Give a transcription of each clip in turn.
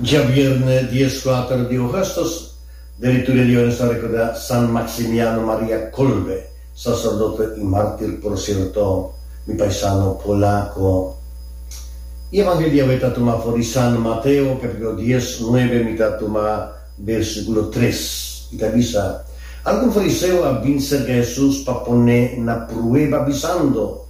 Djabièrnè dies kuater di ogùstus, Diretoria di Ones ta rekordá San Maximiano Maria Kolbe, saserdote i mártir por sierto, mi paisano polako. E evangelio di awe ta tumá for di San Mateo, kapítulo dies, nuebe, mi ta tuma bersíkulo tres. I ta bisa, Algun fariseo a bin serka Hesus pa pon'é na prueba bisando,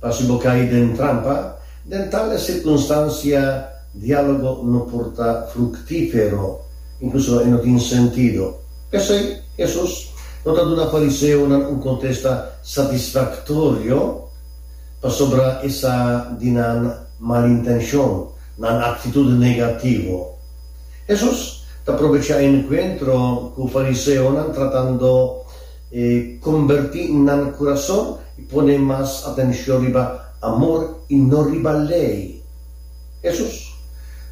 Pa si bo kai den trampa, den tales sirkunstansia diálogo no por ta fruktífero, inkluso e no tin sentido. P'esei, Hesus no ta duna fariseonan un kontesta satisfaktorio pasobra e sa di nan malintenshon, nan aktitut negativo. Hesus ta probechá e enkuentro ku fariseonan tratando. E kombertí nan na kurason i pone mas atenshon riba amor i no riba lei. Hesus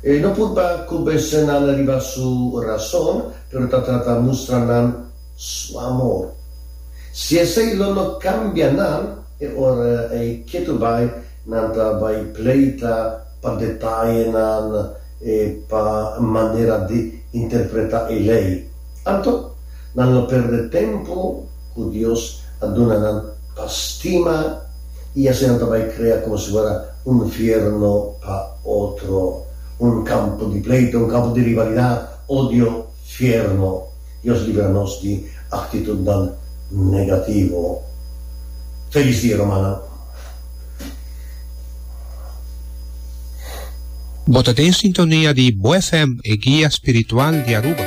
e no purba kombensé nan riba su rason, pero ta trata mustra nan su amor. Si esei lo no kambia nan, e ora ei ketu bai nan ta bai pleita. pa detayenan e pa manera di interpretá e Lei. Anto, nan lo perde tempu ku Dios a duna nan pa stima i así nan ta bai krea komo si fuera un nfierno pa otro, un kampo di pleito, un kampo di rivalidat, odio. Fiernó. Dios libra nos di aktitutnan negativo. Felis dia rumannan. Bo ta den sintonia di Bo FM, e guia spiritual di Aruba.